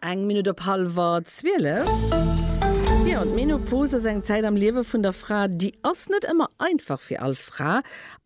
Eng Minutt op hallwer zwielef. Jo, d'Menopause ass eng Zäit am Liewe vun der Fra, déi ass net ëmmer einfach fir all Fra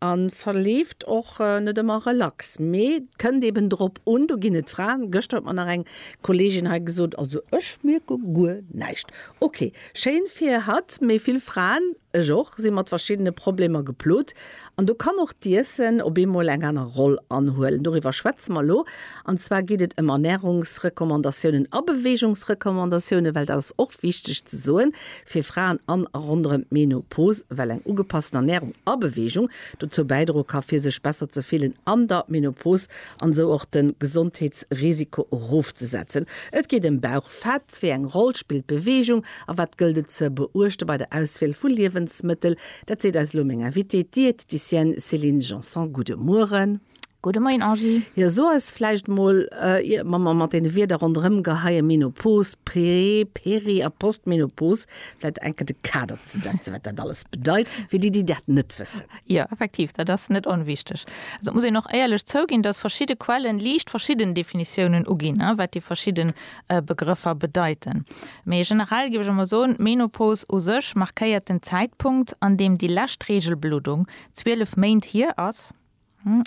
a verleeft och net ëmmer relax. Mee et kënnt eben drop un, do ginn et Fraen, gëschter huet mer nach eng Kolleegin hei gesot, also ech mierke guer näischt. Ok, schéin fir hatt, mee vill Fraen Ech och, si mat verschiddene Problemer geplot. An do kann och d'Iessen op eemol eng aner Roll anhuelen. Doriwwer schwätze mer elo. An zwar geet et ëm Ernärungsrecommandatiounen a Beweegungsrecommandatiounen, well dat ass och wichteg ze soen fir Fraen an a ronderëm d'Menopos, well eng ugepassten Ernärung a Beweegung dozou bäidroe ka fir sech besser ze fillen an der Menopos an esou och de Gesondheetsrisiko erofzesetzen. Et geet ëm Bauchfett, wéi eng Roll spillt Beweegung A wat gëllt et ze beuechte bei der Auswiel vu Liewensmëttel? Dat seet eis elo meng Invitée, d'Diététicienne Céline Janson. Gudde Mueren. Gudde Moien, Angie. Jo, so eis vläicht mol, ier mer mat deene Wierder ronderëm geheien, Menopos, Prä-, Peri a Postmenopos, vläicht eng Kéier de Kader ze setzen, wat dat alles bedeit, fir déi, déi dat net wëssen. Jo, effektiv, dat ass net onwichteg. Also, et muss een och éierlech zouginn, dass verschidde Quellen liicht verschidden Definitiounen uginn, wat déi verschidden Begrëffer bedeiten. Mee generell géif ech emol soen, d'Menopause u sech markéiert den Zäitpunkt, an deem déi lescht Reegelbluddung 12 Méint hier ass,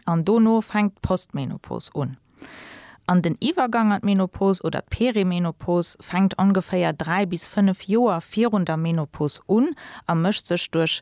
an dono fänkt d'Postmenopause un. An den Iwwergang an d'Menopause oder d'Perimenopause fänkt ongeféier 3 bis 5 Joer virun der Menopause un a mécht sech duerch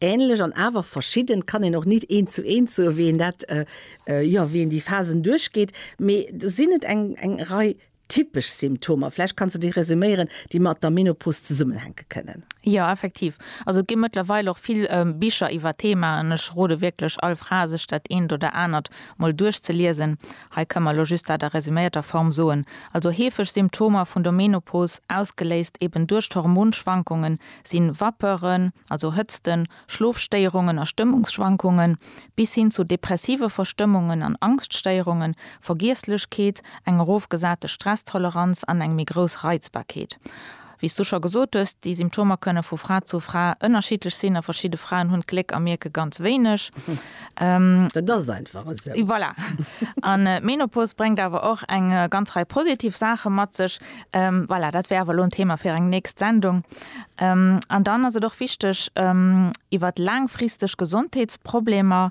Ähnlech an awer verschidden kann een och nit eent zu eent soen, wéi een dat, jo, wéi een déi Phasen duerchgeet. Mee do sinn et eng eng Rei typesch Symptomer. Vläicht kanns de déi resuméieren, déi mat der Menopos zesummenhänke kënnen. Jo, effektiv. Also et gi mëttlerweil och vill Bicher iwwer d'Thema an ech rode wierklech all Fra, sech dat eent oder anert mol duerchzeliesen. Hei kënne mer elo just dat a resuméierter Form soen. Also heefeg Symptomer vun der Menopos, ausgeléist eben duerch d'Hormonschwankungen, si Vapeuren, also Hëtzten, Schlofstéierungen a Stëmmungsschwankungen, bis hin zu depressive Verstëmmungen an Angschtstéierungen, Vergiesslechkeet, eng erofgesate Stresstoleranz an eng méi grouss Reizbarkeet. Wéi s du scho gesot hues, déi Symptomer kënne vu Fra zu Fra ënnerschiddlech sinn a verschidde Fraen hunn d'Gléck a mierke ganz wéineg. Dat ass einfach esou. Voilà. An d'Menopause bréngt awer och eng ganz Rei positiv Saache mat sech. Voilà, dat wär awer elo en Thema fir eng nächst Sendung. An dann ass et och wichteg, iwwert laangfristeg Gesondheetsproblemer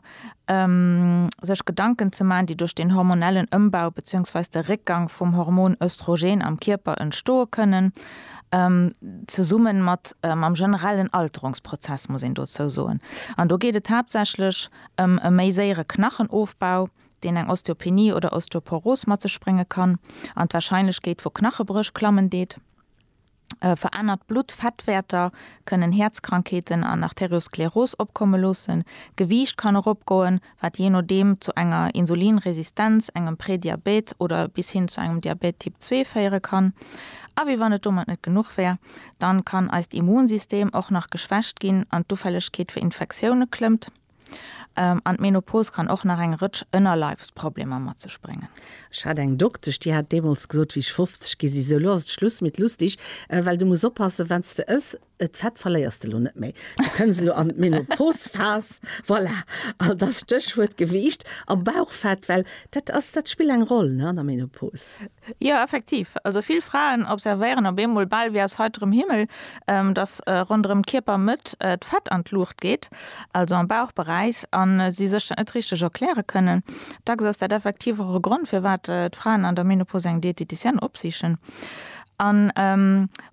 sech Gedanken ze maachen, déi duerch den hormonellen Ëmbau bezéiungsweis de Réckgang vum Hormon Östrogen am Kierper entstoe kënnen, zesumme mat mam generellen Alterungsprozess, muss een dozou soen. An do geet et haaptsächlech ëm e méi séiere Knachenofbau, deen eng Osteopenie oder Osteoporos mat sech brénge kann an d'Warscheinlechkeet vu Knachebréch klammen deet. Verännert Bluttfettwäerter kënnen Häerzkrankheeten an Arterioskleros opkomme loossen. D'Gewiicht kann eropgoen, wat jee nodeem zu enger Insulinresistenz, engem Prédiabète oder bis hin zu engem Diabète Typ 2 féiere kann. A wéi wann et domat net genuch wär, dann kann eist Immunsystem och nach geschwächt ginn an d'Ufällegkeet fir Infektioune klëmmt. An d'Menopause kann och nach eng Rëtsch Ënnerleifsproblemer mat sech bréngen. Ech hat eng Doktesch, déi hat deemools gesot, wéi ech 50 ginn sinn, Sou, lo ass et Schluss mit lustig, well du muss oppassen, wann s de ëss, d'Fett verléiers de lo net méi. Du kënns elo an d'Menopause-Phas, voilà, an da Stéchwuert Gewiicht a Bauchfett, well dat ass, dat spillt eng Roll, ne, an der Menopause. Jo, effektiv. Also vill Fraen observéieren op eemol, bal wéi aus heiterem Himmel, dass ronderëm d'Kierpermëtt d'Fett an d'Luucht geet, also am Bauchberäich, a si sech dat net richteg erkläre kënnen. Dacks ass dat effektiv och e Grond, firwat d'Fraen an der Menopause eng Dieteticienne opsichen. An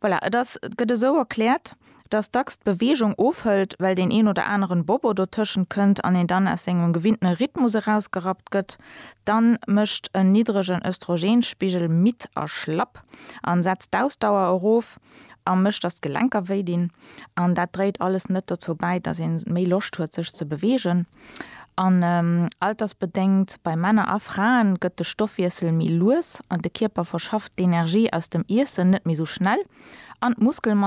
voilà, et ass, et gëtt esou erkläert, dass dacks d'Beweegung ofhëlt, well deen een oder aneren Bobo dotëschent kënnt an een dann aus sengem gewinnten Rhythmus erausgerappt gëtt, dann mécht en niddregen Östrogenspigel midd a schlapp an setzt d'Ausdauer erof a mécht dass d'Gelenker wéi dinn an dat dréit alles net dozou bäi, dass een méi Loscht huet sech ze beweegen an altersbedéngt bei Männer a Fraen gëtt de Stoffwiessel méi lues an de Kierper verschafft d'Energie aus dem Iessen net méi sou schnell an d'Muskelmass.